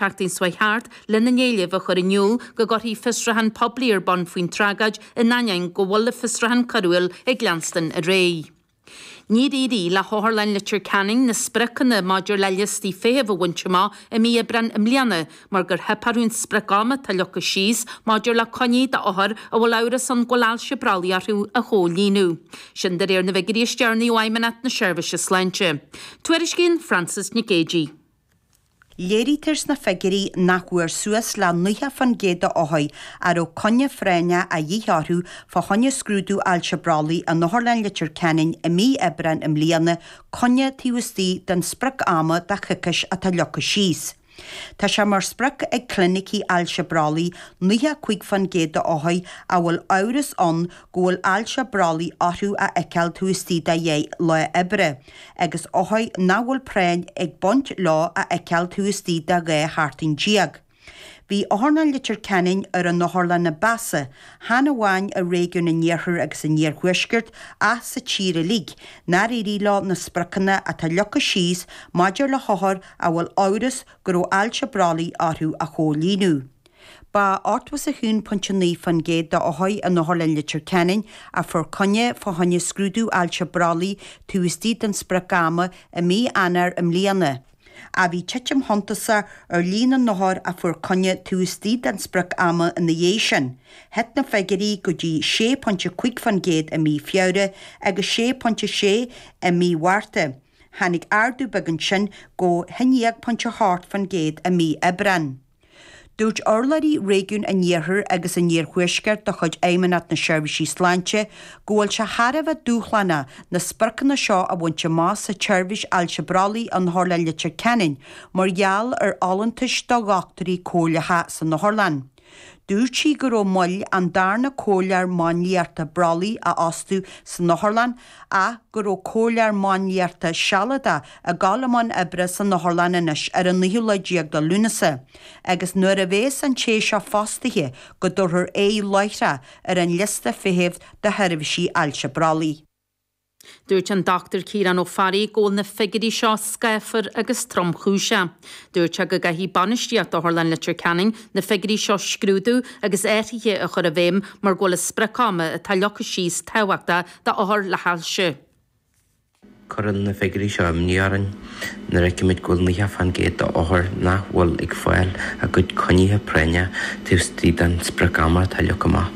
Teachtaí Dála thart lena n-éileamh a chur in iúl go gcuirfí fiosrúchán poiblí ar bun faoin tragóid in ainneoin go bhfuil an fiosrúchán coiriúil ag leanstan ar aghaidh. Níor éirigh le hOtharlann Leitir Ceanainn na spriocanna maidir le liostaí feithimh a bhaint amach i mí Aibreán i mbliana mar gur theip orthu an sprioc ama atá leagtha síos maidir le coinní d'othair a bhfuil amhras ann go bhfuil ailse brollaigh orthu a chomhlíonadh. Sin de réir na bhfigiúirí is deireanaí ó Fheidhmeannacht na Seirbhíse Sláinte. Tuairiscíonn Frances Nic Géadaigh. Léirítear sna figiúirí nach bhfuair suas le 90% de othair a raibh coinne phráinne a dhíth orthu fá choinne scrúdú ailse brollaigh in Otharlann Leitir Ceanainn i mí Aibreán i mbliana coinne taobh istigh den sprioc ama de choicís atá leagtha síos. Tá sé mar sprioc ag clinicí ailse brollaigh 95% de othair a bhfuil amhras ann go bhfuil ailse brollaigh orthu a fheiceáil taobh istigh de dheich lá oibre. agus othair nach bhfuil práinn ag baint leo a fheiceáil taobh istigh de dhá sheachtain déag. Bhí Otharlann Leitir Ceanainn ar an otharlann a ba mheasa, chan amháin i réigiún an Iarthair agus an Iarthuaiscirt ach sa tír uilig, nár éirigh leo na spriocanna atá leagtha síos maidir le hothair a bhfuil amhras go raibh ailse brollaigh orthu a chomhlíonadh. Ba ochtó is a haon pointe naoi fan gcéad de othair in Otharlann Leitir Ceanainn, a fuair coinne fá choinne scrúdú ailse brollaigh taobh istigh den sprioc ama, i mí Eanáir i mbliana. Ach bhí titim shuntasach ar líon na n-othar a fuair coinne taobh istigh den sprioc ama ina dhiaidh sin. Thit na figiúirí go dtí sé pointe a cúig fan gcéad i mí Feabhra agus sé pointe a sé i mí Mhárta. Tháinig ardú beag ansin go haon déag pointe a hocht fan gcéad i mí Aibreán. Dúirt urlabhraí Réigiún an Iarthair agus an Iarthuaiscirt de chuid Fheidhmeannacht na Seirbhísí Sláinte go bhfuil sé thar a bheith dúshlánach na spriocanna seo a bhaint amach sa tseirbhís ailse brollaigh in Otharlann Leitir Ceanainn mar gheall ar fholúntais do dhochtúirí comhairleacha san otharlann. Dúirt sí go raibh moill an darna comhairleoir máinliachta brollaigh a fhostú san otharlann ach go raibh comhairleoir máinliachta sealadach ag gabháil i mbun oibre san otharlann anois ar an naoú lá déag de Lúnasa agus nuair a bhéas an té seo fostaithe go dtabharfar aghaidh láithreach ar an liosta feithimh do sheirbhísí ailse brollaigh. Dúirt an Dr Ciarán Ó Fearraigh go bhfuil na figiúirí seo scáfar agus tromchúiseach. Dúirt sé go gcaithfidh bainistíocht Otharlann Leitir Ceanainn na figiúirí seo a scrúdú agus athraithe a chur i bhfeidhm mar go bhfuil an sprioc ama atá leagtha síos tábhachtach d'othair le hailse. Cuireann na figiúirí seo imní orainn nuair a fheicimid go bhfuil 90% d'othair nach bhfuil ag fáil a gcuid coinnithe práinne taobh istigh den sprioc-am atá leagtha amach.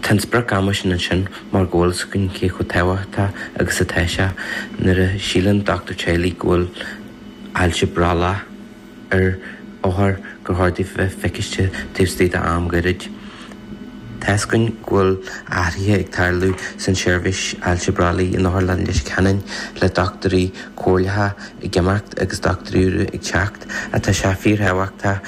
Tá an sprioc-am sin ansin mar go bhfuil a fhios againn cé chomh tábhachtach agus atá sé nuair a síleann dochtúir teaghlaigh go bhfuil ailse brollaigh, ar othar gur chóir di bheith feiciste taobh istigh d'am gairid. Tuigeann go bhfuil athruithe ag tarlú san tseirbhís ailse brollaigh in Otharlann Leitir Ceanainn, le dochtúirí comhairleacha ag imeacht agus dochtúirí úra ag teacht, ach tá sé fíorthábhachtach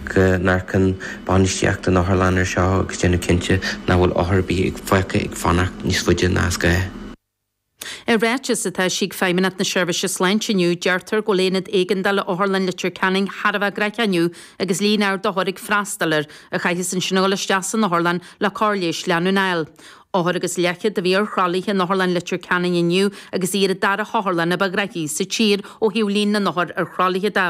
go n-amharcann bainistíocht na hOtharlainne ar seo agus déanamh cinnte nach bhfuil othar ar bith fágtha ag fanacht níos faide ná is gá. I ráiteas atá eisithe ag Feidhmeannacht na Seirbhíse Sláinte inniu, deirtear go bhfuil aonad éigeandála Otharlann Leitir Ceanainn thar a bheith graitheach inniu agus líon ard othar ag freastal air a chaitheas ansin a dhul isteach san otharlann le cóir leighis leanúnach a fháil. Othar agus leathchéad a bhí ar thralaithe in Otharlann Leitir Ceanainn inniu agus í ar an dara hotharlann ba ghraithí sa tír ó thaobh líon na n-othar ar thralaithe de.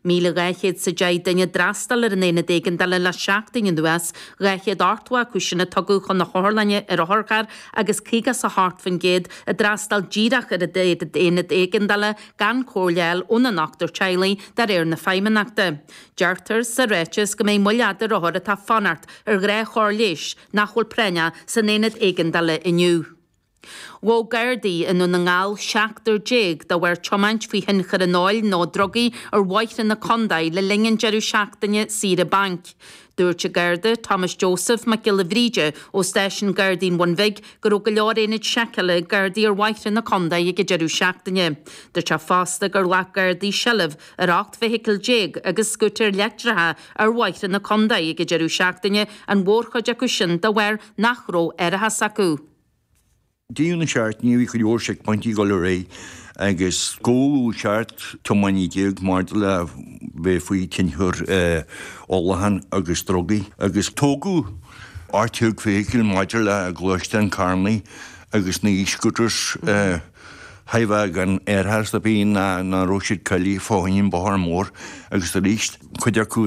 1,200 is a deich duine a d'fhreastail ar an Aonad Éigeandála le seachtain anuas, 200 ochtó a hocht acu sin a tugadh chun na hotharlainne ar otharcharr agus 50 is a hocht faoin gcéad a d'fhreastail díreach ar an Aonad Éigeandála gan comhairle a fháil óna ndochtúir teaghlaigh, de réir na Feidhmeannachta. Deirtear sa ráiteas go mbeidh moill fhada ar othair atá ag fanacht ar chóir leighis nach bhfuil práinneach san Aonad Éigeandála inniu. Ghabh Gardaí i nDún na nGall seachtar déag de bharr tiomáint faoi thionchar an óil nó drugaí ar bhóithre na condae le linn an deireadh seachtaine saoire bainc. Dúirt an Garda Thomas Joseph Mac Giolla Bhríde ó Stáisiún Gardaí an Bhuin Bhig go raibh go leor aonaid seiceála ag Gardaí ar bhóithre na condae ag an deireadh seachtaine. Dúirt sé fosta gur ghlac Gardaí seilbh ar 18 bhfeithicil agus scútair leictreacha ar bhóithre na condae ag an deireadh seachtaine, an mhórchuid acu sin de bharr nach raibh árachas acu. Deireadh na seachtaine bhí cuid mhór seicphointí ag dul ar aghaidh agus gabhadh seacht tiománaí déag maidir le bheith faoi thionchar ólacháin agus drugaí agus tógadh ocht déag feithicil maidir le gluaisteáin carranna agus na e-scooters a tógadh gan árachas a bheith nó nach raibh siad cáilithe fá choinne an bhóthair mór agus arís cuid acu